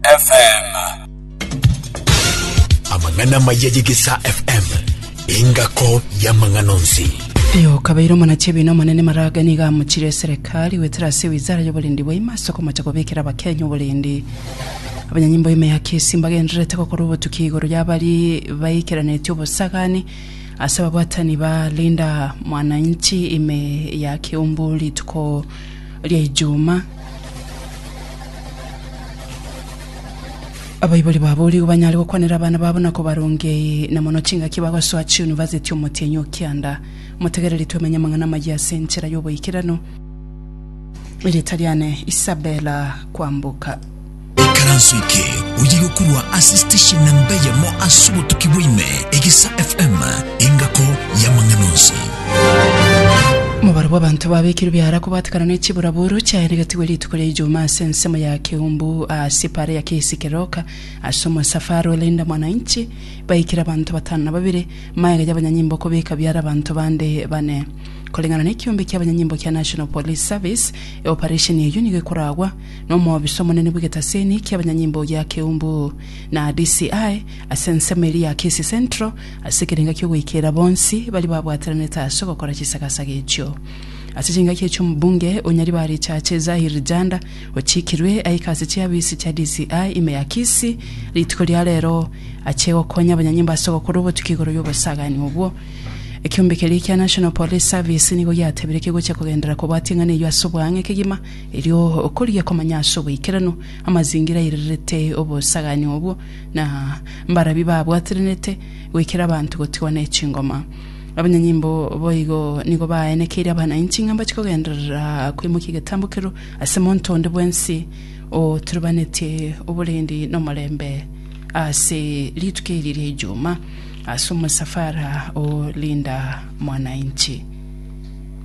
FM. Amang'ana amaya ye Gesa FM, engako y'amang'ana onsi. Eyo okabeire omonachi ebina omonene maraga nigo amochire eserekari gwetera ase wizara y'oborendi bwa ime ase okomocha kobekera abakenya oborendi abanyanyimbo ime ya kesi mbagendererete gokora obotuki igoro y'abari baikeranetie obosagani ase ababwatani ba linda mwananchi ime ya kiumbu rituko ri'Ijumaa. Abaibori baboorigwe banyare gokwanera abana babo na kobarongia ee na mono chingaki bagosoa chiunivasiti Omotienyi o Kianda. Motegereri twemenye amang'ana amayia ase enchera y'oboikeranu. Erieta riane Isabella Kwamboka. Ikaranso eke oye gokorwa ase station namba eyemo ase obotuki bwaime, Egesa FM, engako y'amang'ana onsi. Omobaro bw'abanto babekirwe biara kobatekana ne chiburaburu chiaye negatigwe rituko ria Ijumaa ase ensemo ya Keumbu ase para ya KC Keroka ase omosafari o Linda Mwananchi baikire abanto batano na babere magega y'abanyanyimbo kobeka biara abanto bande bane. Koreng'ana nekiombe kiabanyanyimbo kia National Police Service, eoparesheni eyio nigo ekoragwa nomobisa omonene bw'egetasini ki'abanyanyimbo gia Keumbu, na DCI ase ensemo eria ya Kisii Central ase ekerenga ki'ogoikeera bonsi baria babwataranete ase ogokora chisagasaga echio. Ase chingaki echio omobunge o Nyaribari-Chache Zahir Janda ochikirwe aike ase chiafisi chia DCI ime ya Kisii rituko ria rero achie gokonya abanyanyimbo ase ogokora obotuki igoro y'obosagani obwo. Ekiombe keria kia National Police Service nigo giatebire kegochia kogenderera kobwatia eng'ana eyio ase obwange kegima Erio okorigia komanya ase oboikeranu amazingira airerete obosagani obwo, na mbarabi babwatirenete goikera abanto gotigwa ne chingoma. Abanyanyimbo boigo nigo baaenekeire abanainchi ng'a mbache kogenderera koimokia egetambo kerw ase monto onde bwensi oturebanetie oborendi nomorembe ase rituko eri ria Ijuma ase omosafara o Linda Mwananchi.